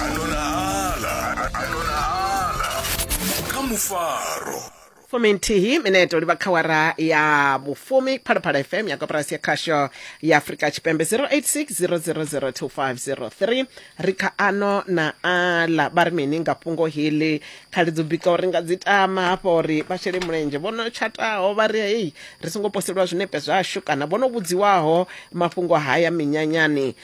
anonala anonala kha mufaro fumi nthihi mineto livha kha wara ya vhufumi phalaphala fm ya koporasi ya khasho ya afurika tshipembe 0860002503 ri kha ano na ala vha ri mini nga fhungo heḽi khali dzo bika uri nga dzi tama hafho uri vha shele mulenzhe vho no tshataho vha ri hei ri songo poseliwa zwinepe zwashu kana vho no vhudziwaho mafhungo haya minyanyani